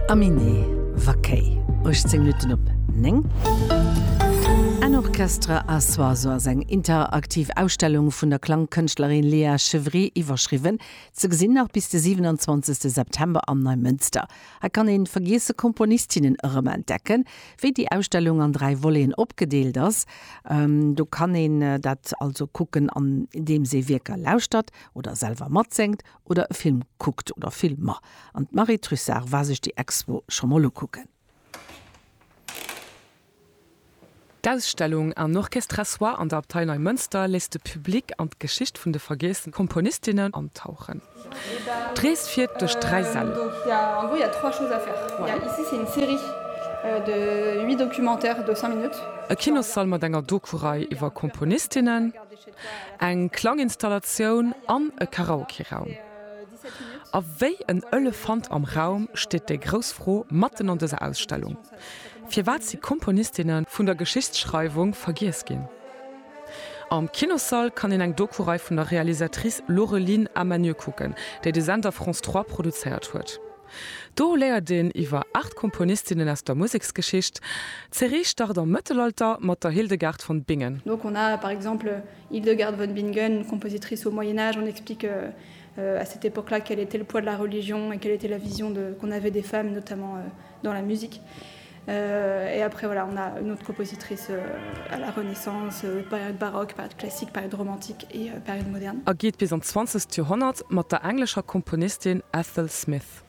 Aminé Vaquei, 18 Minutten op 9. En Orchestre à soi, sou ass eng interaktiv Ausstellung vun der Klangkënschtlerin Léa Chevry iwwerschriwwen. Ze gesinn nach bis de 27 September am Neimënster. Hei kann een vergiesse Komponistinnen erëmentdecken. Wéi déi Ausstellung an dräi Voleten opgedeelt ass, do kann een dat also kucken, andeems ee Wierker lauschtert oder selwer matséngt oder e Film kuckt oder Filmer. An d'Marie Trussart war sech déi Expo scho mol ukucken. D'Ausstellung Un orchestre soit an der Abtei Neimënster léisst de Public an d'Geschicht vun de vergiesse Komponistinnen antauchen. D'Rees fiert duerch dräi Säll. E Kinossall mat enger Doku-Rei iwwer Komponistinnen. eng Klanginstallatioun an e Karaokeraum. A wéi en Elefant am Raum steet déi grouss Fro matten an dëser Ausstellung, Firwat si Komponistinne vun der Geschichtsschreiwung vergiess ginn? Am Kinossall kann een eng Doku-Rei vun der Realisatrice Laureline Amanieu kucken, déi de Sender France 3 produzéiert huet. Do léiert een iwwer aacht Komponistinnen aus der Museksgeschicht. D'Serie start am Mëttelalter mat der Hildegard von Bingen. Donc on a par exemple Hildegard von Bingen, une compositrice au Moyen Âge, on explique à cette époque-là quel était le poids de la religion et quelle était la vision qu'on avait des femmes notamment dans la musique. Et après voilà on a une autre compositrice à la Renaissance, période baroque, période classique, période romantique et période moderne. A geet bis an d'zwanzegst Joerhonnert mat der englescher Komponistin Ethel Smyth.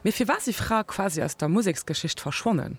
Mee firwat si Frae quasi aus der Museksgeschicht verschwonnen?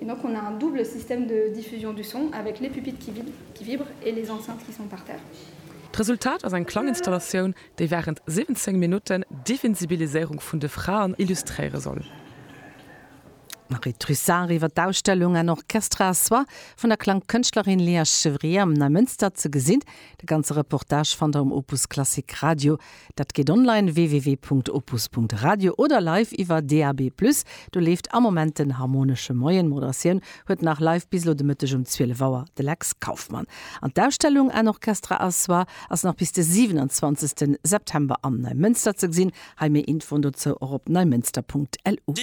Et donc on a un double système de diffusion du son avec les pupitres qui vibrent qui vibrent et les enceintes qui sont par terre. D'Resultat ass eng Klanginstallatioun, déi während 17 Minutten d'Divinsibiliséierung vun de Fraen illustréiere soll. Marie Trussart iwwer d'Ausstellung Un orchestre à soi vun der Klangkënschtlerin Léa Chevrier am Neimënster ze gesinn. De ganze Reportage fannt der um Opus Klassik Radio. Dat geet online, www.opus.radio, oder live iwwer DAB+. Do leeft am Moment den Harmonesche Moien. D'Moderatioun huet nach live bis elo de Mëtteg um 12 Auer de Lex Kauffmann. An d'Ausstellung Un orchestre à soi ass nach bis de 27 September am Neimënster ze gesinn. Hei méi Infoen dozou och op neimënster.lu.